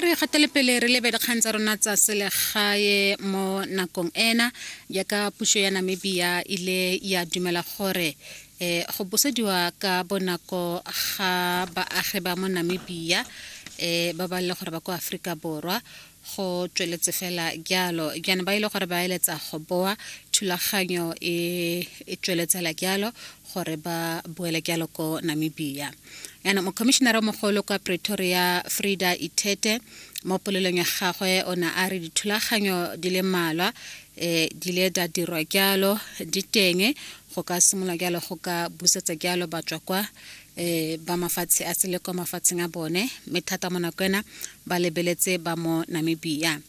re gatele pele re lebe dikgang tsa rona tsa selegae mo nakong ena jaaka puso ya namibia ile ya dumela gore um go busediwa ka bonako ga baagi ba mo namibia um ba ba le gore ba kwa aforika borwa go tsweletse fela jalo jaana ba ile gore ba eletsa go boa thulaganyo e, e tsweletsela jalo gore ba boele jalo ko namibia yana mokomišenara mogolo kwa pretoria frida ithete mo polelong ya gagwe o ne a re dithulaganyo di le mmalwa um di ile da dirwa jalo di teng go ka simolola jalo go ka busetsa jalo batswa kwa eh ba mafatshe a sele kwa mafatsheng a bone mme thata mo nako ena ba lebeletse ba mo namibia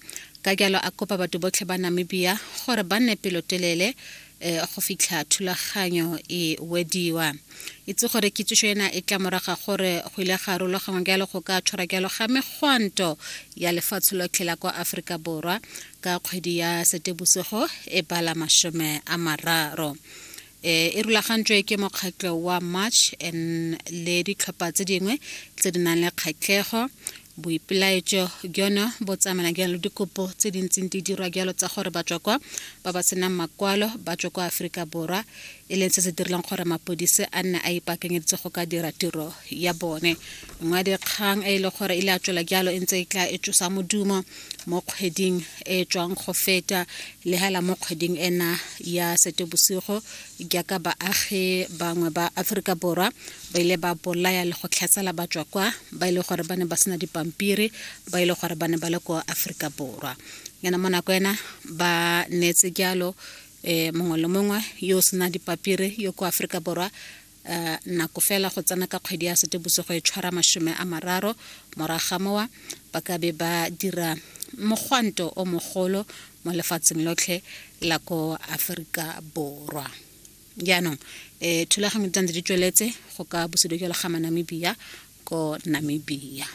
ka jalo a kopa batho botlhe ba namibia gore ba nne pelotelele eh go fitlha thulaganyo e wediwa itse gore kitsiso ena e tla moraga gore go ile ga rulagangwa jalo go ka tshwara jalo ga megwanto ya lefatshe lotlhe la kwa aforika borwa ka kgwedi ya setebosego e bala masome a mararo e e rulagantswe ke mokgatlho wa march and le ditlhopha tse dingwe tse di nang le kgatlhego boipelaetso jono bo tsamana jalo dikopo tse di ntseng di dirwa jalo tsa gore batswa kwa ba ba senang makwalo ba tswa kwa aforika borwa e leng se se direlang gore mapodise a nne a ipaakanyeditse go ka dira tiro ya bone nngwe ya dikgang e e le gore e le a tswela jalo e ntse e tla e tsosa modumo mo kgweding e tswang go feta le hela mo kgweding ena ya setebosigo jaaka baagi bangwe ba aforika borwa ba ile ba bolaya le go tlhatsela batswa kwa ba e le gore ba ne ba sena dipampiri ba e le gore ba ne ba le ko aforika borwa yana mo nako ena ba neetse jalo um mongwe le mongwe yo o sena dipapiri yo ko aforika borwa Uh, nako fela go tsena ka kgwedi ya setebosigo e tshwara masome a mararo moraga mowa ba ka be ba dira mogwanto o mogolo mo lefatsheng lotlhe la ko aforika borwa jaanong um thulaganyo di di tsweletse go ka busedo jalo ga manamibia ko namibia